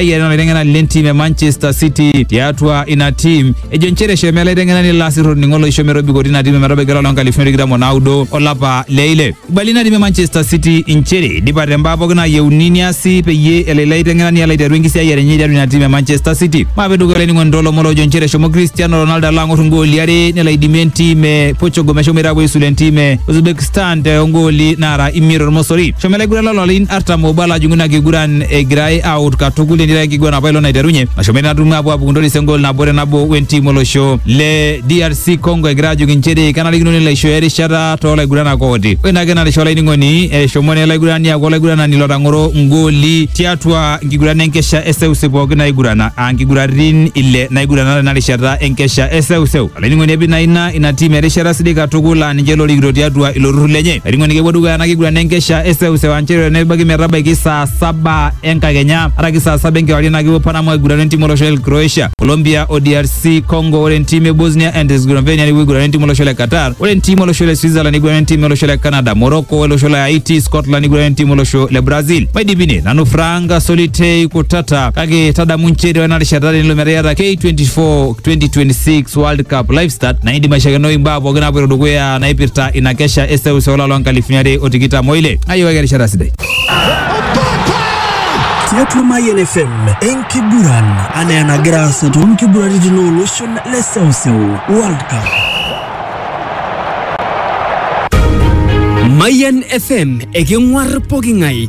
eyiari ina laiteng'enani lentim e Manchester City tiatua ina tim ejo nchere eshomo ele aiteng'enani ilo asirr olning'o loisho metobikotu ina tim ometabaiki olapa loonkalifuni are tikitam onaudo olapa le ile ibali ina tim e Manchester City inchere idipa tembaa pooki nayieuni niasi peyie elo ilo aiteng'enani alo aiteru enkisiayiare enye tiatua ina tim e Manchester City maape dukuya olainining'oni toolomon loojo nchere eshomo Cristiano Ronaldo alo ang'or ingooli are nelo aidimie entim e Portugal meshomoita apuo aisula entim e Uzbekistan toongooli naara imiet tormosori eshomo ele aiguranani lolarin artam obo ala ajung'u ina kiguran egirai aut katukul enira enkiguran apa ilo naiterunye nashomo natum apuo apukuntoris engol nabo te nabo wentim olosho le DRC Congo egira ajoki inchere kenarikino nelo aishooyo erishata toolaiguranak ooti ore ina kena risha olainining'oni eshomo naa olaigurani aaku olaiguranani lotang'oro ngoli tiatua nkiguran enkesha eseuseu pooki naigurana aa nkiguratin ile naigurana tena rishata enkesha eseuseu Olainining'oni epi naa ina ina tiim erishata sidai katukul laa ninche lorikito tiatua ilo turrur lenye. Olainining'oni kepuo dukuya ena kiguran enkesha eseuseu aa nchere nebaiki metabaiki saa saba enkakenya araki saa saba enkewarie naa kepuo Panama aigurana entim olosho le Croatia, Colombia o DRC Congo. Ore entim e Bosnia and Herzegovina nepuo aigurana entim olosho le Qatar. Ore entim olosho le Switzerland neigurana entim olosho le Canada, Morocco o olosho le Haiti, Scotland neigurana entim olosho le Brazil. Maidipi ine, nanu Frank Solitei Kutata kake tadamu nchere ore ena rishata tenilo metaa iyata K24 2026 world cup live start naidi mashakeno imbaa pookin naapoito dukuya naipirta ina kesha eseuseu olapa loo nkalifuni are o tikitam oile ayiewaki erishata sidai tiatua Mayian FM enkiguran anaa enagira aasa toonkiguraritin ooloshon le seuseu World Cup. Mayan FM eking'uar poking'ae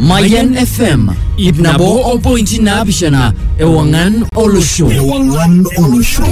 Mayan FM ip nabo opointi naapishana ewang'an olosho. Ewang'an olosho.